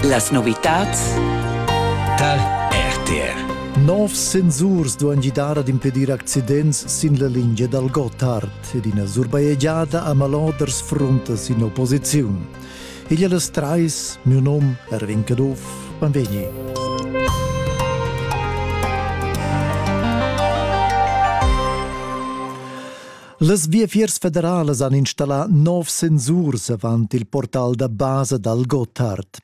Las novitads tar RTR. Novs sensurs duan gidar ad impedir accidents sin la lingia dal Gotthard ed ina surbajegiada a maloders fruntas in opposiziun. Igl e las trais, miu nom Erwin Caduff, benvegni. Las Viafiers federalas han installà nov sensurs avant il portal da basa dal Gotthard.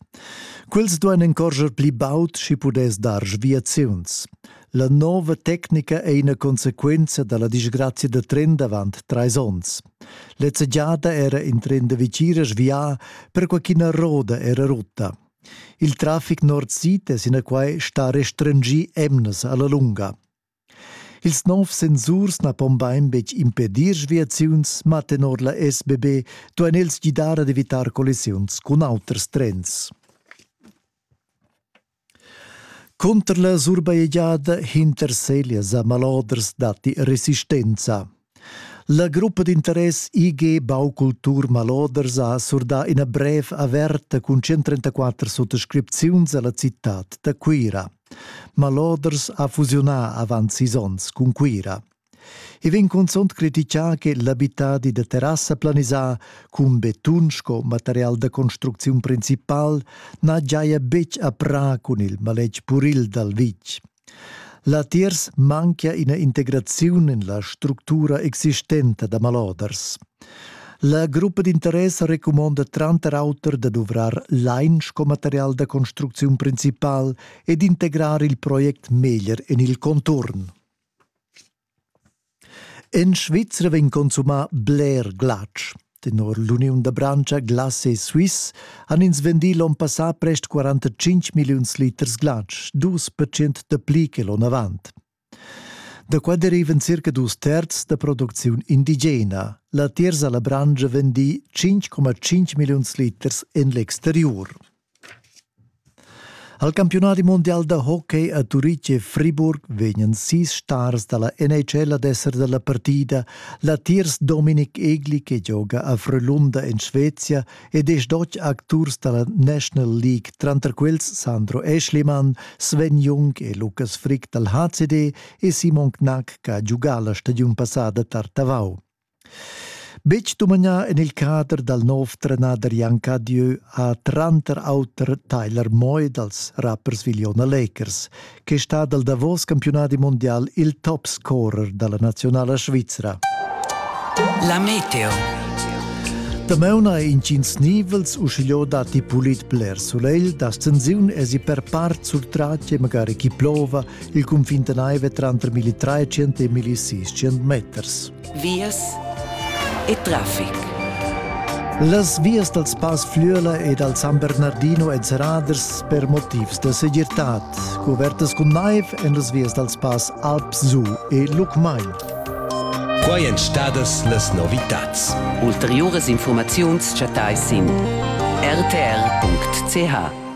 Quels duain encorscher pli baud sch'i pudess dar sviaziuns. La nova tecnica è ina consequenza da la disgrazia da tren d'avant trais onns. Lezza giada era in tren da vicina svià, perquai ch'ina roda era rutta. Il traffic nord-sid è sinaquai stà restringì emnas a la lunga. Ils nov sensurs na pon bain betg impedir sviaziuns, ma tenor la SBB duain els gidar ad evitar collisiuns cun auters trens. Cunter la surbajegiada hinter Seglias a Maloders datti resistenza. La gruppa d'interess IG Baukultur Maloders ha surdà ina brev averta cun 134 suttascripziuns a la citad da Cuira. Maloders ha fusiunà avant sis onns cun Cuira. I vegn cunzunt critichà che l'abitadi da terrassa planisà cun betun sco material da construcziun principal na giaja betg a prà cun il maletg puril dal vitg. Latiers manchia ina integraziun en la structura existenta da maloders. La gruppa d'interess recumonda tranter auter da duvrar lain sco material da construcziun principal e d'integrar il project meglier en il conturn. En Svizra vegn consumà bler glatsch. Tenor l'uniun da branscha Glace Suisse han ins vendì l'onn passà prest 45 milliuns liters glatsch, dus percent dapli che l'onn avant. Da qua derivan circa dus terz da producziun indigena. Latiers ha la branscha vendì 5,5 milliuns liters en l'exteriur. Al campiunadi mundial da hockey a Turitg e Friburg vegnan sis stars dalla NHL ad esser dalla partida. Latiers Dominik Egli che gioga a Frölunda in Svezia ed è stoch acturs dalla National League, tranter quels Sandro Eschlimann, Sven Jung e Lukas Frick dal HCD e Simon Knack che ha giugà la stagiun passada tar Tavau. Betg dumagnà en il cader dal nov trenader Jan Cadieu ha tranter auter Tyler Moy dals rappers Viliona Lakers, che è stà dal davos campiunadi mondial il top-scorer da la nazionala svizra. La meteo. Damaun ha intgins nivels uschigliò datti pulit bler sulegl, da stensiun esi per part sul tratg e magari chi plova, Il cunfin tenaiva tranter 1300 e 1600 meters. Vias e trafic. Las vias dals Pass Flüela e dal San Bernardino èn serradas per motivs da segirtad, covertas cun naiv en las vias dals Pass Alpsu e Lucmagn. Quai èn stadas las novitads. Ulteriuras informaziuns chattais sin rtr.ch.